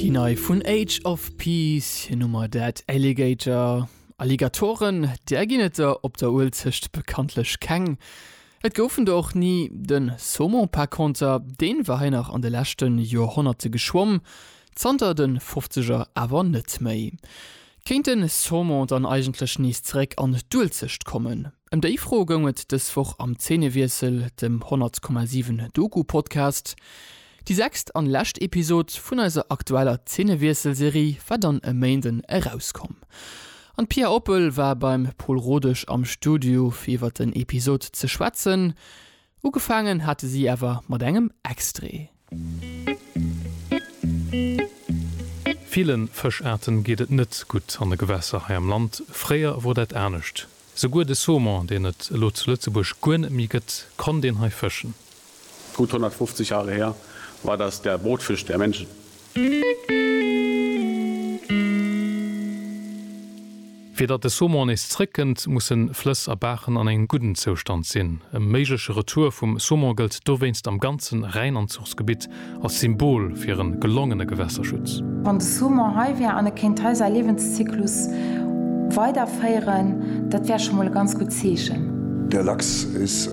Déi nei vun Age of Peace, hir Nummer Dead Alligator, Alligatoren, där ginn et der op der Uelzecht bekanntlech keng. Et goufen der och ni. Den Saumon par conter, deen war hei nach an de leschten Joerhonnerte geschwomm, zanter den Fofzeger awer net méi. Kéint den Saumon dann eigentlech nees zeréck an d'Uelzecht kommen? Ëm déi Fro goung et dës Woch am Zeenewiessel, dem 100,7 Doku-Podcast. Déi sechst an lescht Episod vun eiser aktueller Zeenewiessel-Serie war dann e Méinden erauskomm. An d'Pia Oppel war beim Pol Rodesch am Studio fir iwwer den Episod ze schwätzen. Ugefaangen hate si awer mat engem Extrait. Villen Fëschaarten geet et net gutt an de Gewässer hei am Land. Fréier wor dat anescht. Souguer de Saumon, deen et elo zu Lëtzebuerg guer net méi gëtt, konnt een hei fëschen. Gutt 150 Jahre her war das der Brotfisch der Menschen. Fir datt de Saumon nees zréckkënnt, musse Flëss a Baachen an engem gudden Zoustand sinn. E méigleche Retour vum Saumon gëllt dowéinst am ganzen Rhäinanzuchsgebitt als Symbol fir e gelongene Gewässerschutz. Wann de Saumon hei wär an e kéint hei säi Liewenszyklus weiderféieren, dat wär scho mol e ganz gutt Zeechen. Der Lachs is.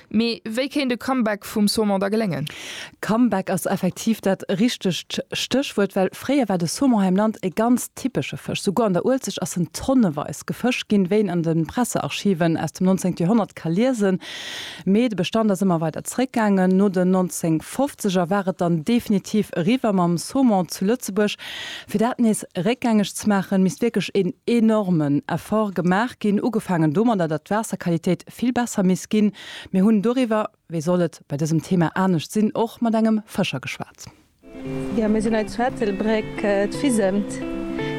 Mee wéi kéint e Comeback vum Saumon da geléngen? Comeback ass effektiv dat richtegt Stéchwuert, well fréier war de Saumon hei am Land e ganz typesche Fësch. Souguer an der Uelzecht ass en tonneweis gefëscht ginn, wéi een an de Pressearchiven aus dem 19. Joerhonnert ka liesen. Mee de Bestand ass ëmmer weider zeréckgaangen. No den 1950er war et dann definitiv eriwwer mam Saumon zu Lëtzebuerg. Fir dat nees réckgängeg ze maachen, misst wierklech een enormen Effort gemaach ginn, ugefaangen domadder, datt d'Waasserqualitéit vill besser misst ginn. Mir hunn doriwwer, wéi soll et bei dësem Thema anescht sinn, och mat engem Fëscher geschwat. Jo, mir sinn hei zu Ettelbréck, d'Fisemt.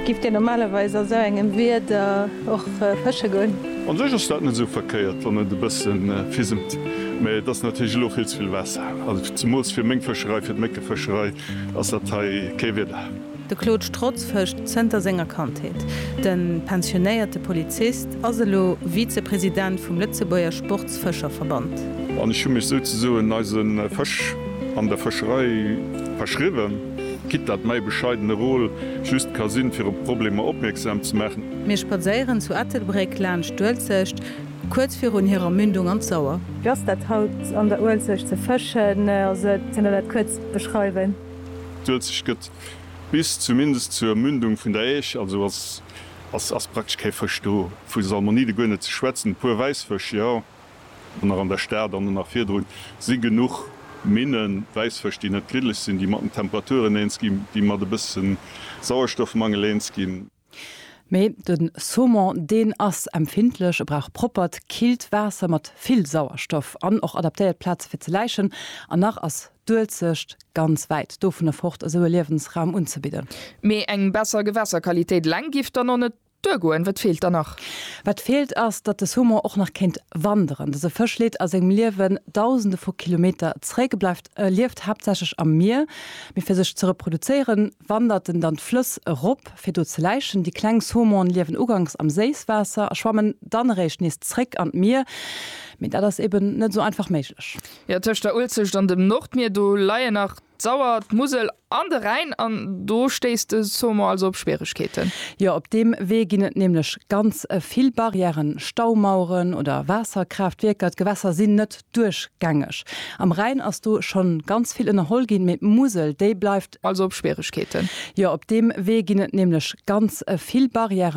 Gift Dir normalerweis a sou engem Wieder och fësche goen? An sech ass dat net esou verkéiert, wann et e bësse fisemt, mä et ass natierlech elo vill ze vill Waasser, also zemools fir meng Fëscherei, fir d'Méckefëscherei ass dat hei kee Wieder. De Claude Strotz fëscht zënter senger Kandheet. De pensionéierte Polizist ass elo Vize-President vum Lëtzebuerger Sportsfëscherverband. An ech hu mech souzesoen eise Fësch an der Fëscherei verschriwwen, quitte dat mäi bescheidene Rôle just ka sinn, fir op Problemer opmierksam ze maachen. Mir spadséieren zu Ettelbréck laanscht d'Uelzecht, kuerz virun hirer Mündung an d'Sauer. Wéi ass dat haut an der Uelzecht ze fëschen? Könnt der dat kuerz beschreiwen? D'Uelzecht gëtt bis zumindest zur Mündung vun der Äisch, also ass praktesch kee Fësch do, vu Salmonide guer net ze schwätzen. E puer Wäissfësch, jo, an nach an der Stad an nach virdrun si genuch Minnen, Wäissfësch, déi net gliddeg sinn, déi mat den Temperaturen eens ginn, déi mat e bësse Sauerstoffmangel eens ginn. Mee de Saumon, deen ass empfindlech, e brauch proppert, killt Waasser mat vill Sauerstoff an och adaptéiert Plaze fir ze läichen. An nach ass d'Uelzecht ganz wäit dovunner fort, esou e Liewensraum unzebidden. Mee eng besser Gewässerqualitéit eleng giff dann och net duergoen. Wat feelt dann nach? Wat feelt ass, datt de Saumon och nach kéint wanderen. Dëse Fësch leet a sengem Liewen dausende vu Kilometer zréck, e bleift, e lieft haaptsächlech am Mier. Mee fir sech ze reproduzéieren, wandert en dann d'Flëss erop, fir do ze läichen. Déi kleng Saumone liewen uganks am Séisswaasser a schwammen dann eréischt nees zréck an d'Mier. Mee dat ass eben net esou einfach méiglech. Jo, tëscht der Uelzecht an dem Nordmier, do leien nach d'Sauer, d'Musel an de Rhäin an do stéisst de Saumon also op Schwieregkeeten. Jo, op deem Wee ginn et nämlech ganz vill Barrièren, Staumaueren oder Waasserkraaftwierker. D'Gewässer sinn net duerchgängeg. Am Rhäin ass do schonn ganz vill ënnerholl ginn, mee d'Musel, déi bleift also op Schwieregkeeten. Jo, op deem Wee ginn et nämlech ganz vill Barrièren.